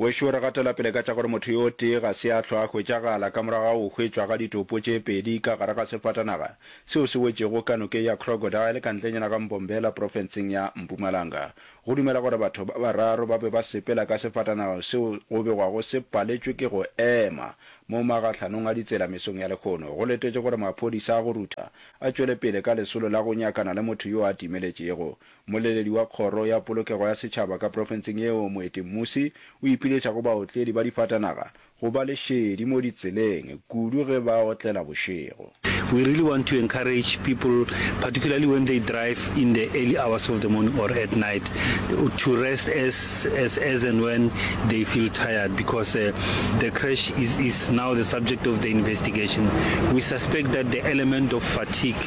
Wešo re gatela pele ka tša gore motho yo tee ga se a hlwa a hwetšagala ka morago ga go hwetšwa ga ditopo tše pedi ka gare ga sefatanaga seo se wetšego ka nokeng ya Crocodile ka ntlenyana ga Mbombela profenseng ya Mpumalanga. Go dumelwa gore batho ba bararo ba be ba sepela ka sefatanaga seo go begwago se paletšwe ke go ema mo magahlanong a ditsela mesong ya lekgono go letetše gore maphodisa a go rutha a tšwele pele ka lesolo la go nyakana le motho yo a timeletšego Mmoleledi wa Kgoro ya Polokego ya Setšhaba ka profenseng yeo Moeti Mmusi o ipiletša go baotledi ba difatanaga go ba le šedi mo ditseleng kudu ge ba otlela bošego. We really want to encourage people particularly when they drive in the early hours of the morning or at night to rest as as as and when they feel tired because uh, the crash is is now the subject of the investigation. We suspect that the element of fatigue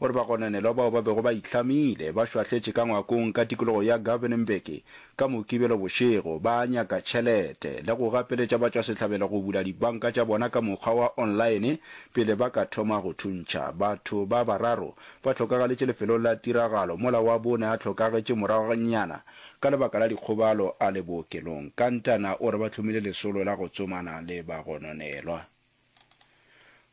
O re bagononelwa bao ba bego ba ihlamile ba šwahletše ka ngwakong ka tikologo ya Govenenberg ka Mokibelo bošego ba nyaka tšhelete le go gapeletša batšwasehlabelo go bula dibanka tša bona ka mokgwa wa online pele ba ka thoma go thuntšha. Batho ba bararo ba hlokagaletše lefelong la tiragalo mola wa bone a hlokagetše moragonyana ka lebaka la dikgobalo a le bookelong. Kantana o re ba hlomile lesolo la go tsomana le bagononelwa.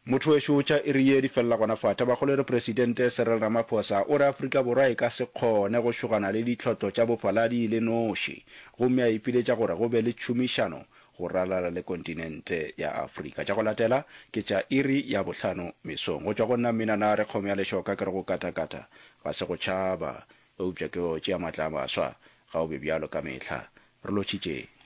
Motho wešo tša iri ye di felela gona fa. Tabakgolore Presidente Cyril Ramaphosa o re Afrika Borwa e ka se kgone go šogana le ditlhotlo tša bofaladi e le noši gomme a ipiletša gore go be le tšhomišano go ralala le kontinente ya Afrika. Tša go latela ke tša iri ya bohlano mesong. Go tšwa go nna Mmina Nare kgomo ya lešoka ke re go katakata ga se go tšhaba eupša ke go tšea matla a maswa ga o be bjalo ka mehla. Re lotšhitšeng.